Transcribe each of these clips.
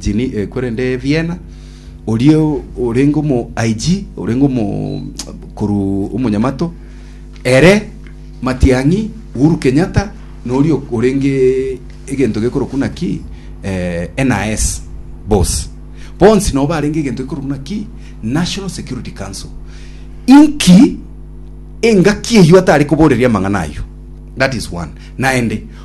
Geneva, korende Vienna, oria orenge omo IG, orenge omo korwa omonyamato ere Matiang'i, Uhuru Kenyatta, na oria orenge egento gekorokwa naki eh, NAS boss bonsi nabo barenge egento gekorokwa naki National Security Council. Inki engaki eyio atare koboreria amang'ana ayio? That is one. Naende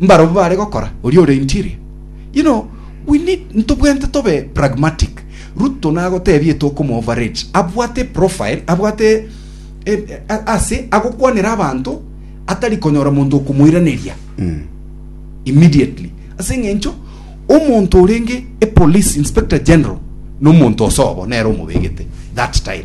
mbarabwo bare gokora, oria ore interior. You know, we need, ntobwenerete tobe pragmatic. Ruto nagotebie tokomo overrate, abwate eprofile, abwate e, a- ase agokwanera abanto atari konyora monto okomoiraneria immediately ase eng'encho omonto orenge e police inspector general nomonto osobo nere omobegete that time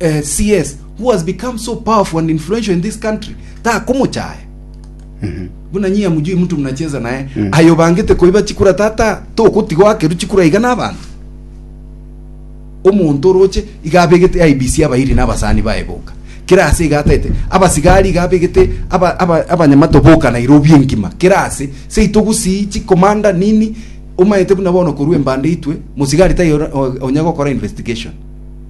eh, CS who has become so powerful and influential in this country takomochaya buna nyia mujui mtu mnacheza naye ayo bangete koiba chikura tata tokotigo akeru chikura iga n'abantu omonto oroche iga abegete IBC abairi n'abasani baye boka kera ase iga ataete abasigari iga abegete aba- aba- abanyamato boka Nairobi engima kera ase seito gusii chikomanda nini omaete buna bono korwa embande itwe mosigari tayo onye gokora investigation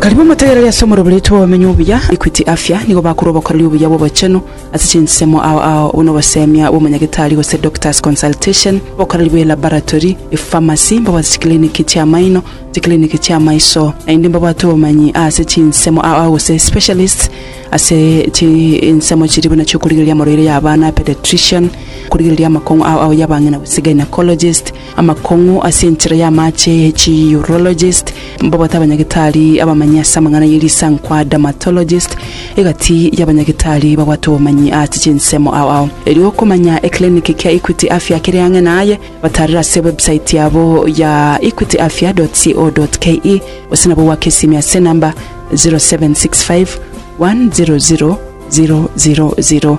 Karibu motegerere ase omorobererio tw'abamenyi obuya, Equity Afya, nigo bakorwa obokoreri obuya bw'obochenu ase chinsemo ao ao buna obosemia bw'omonyagetari gose doctor's consultation, obokoreri bwe laboratory, epharmacy, mbabwate chikiliniki chi'amaino, chikiliniki chi'amaiso, naende mbabwate obomanyi aase chinsemo ao ao gose specialists ase chinsemo chiria buna chi'okorigereria amarwaire y'abana, pediatrician, okorigereria amakong'u ao ao y'abang'ina gose gynaecologist, Amakong'u ase enchera y'amaache e chiurologist, mbabwate abanyagitari abamanyi ase amang'ana ye risankwa dermatologist, egati y'abanyagitari babwate obomanyi ase chinsemo ao ao. Erio okomanya ekiliniki kia Equity Afya kere ang'e naye, batarere ase website yabo ya equityafya.co.ke gose nabo gwake esimi ase enamba 0765 100 000.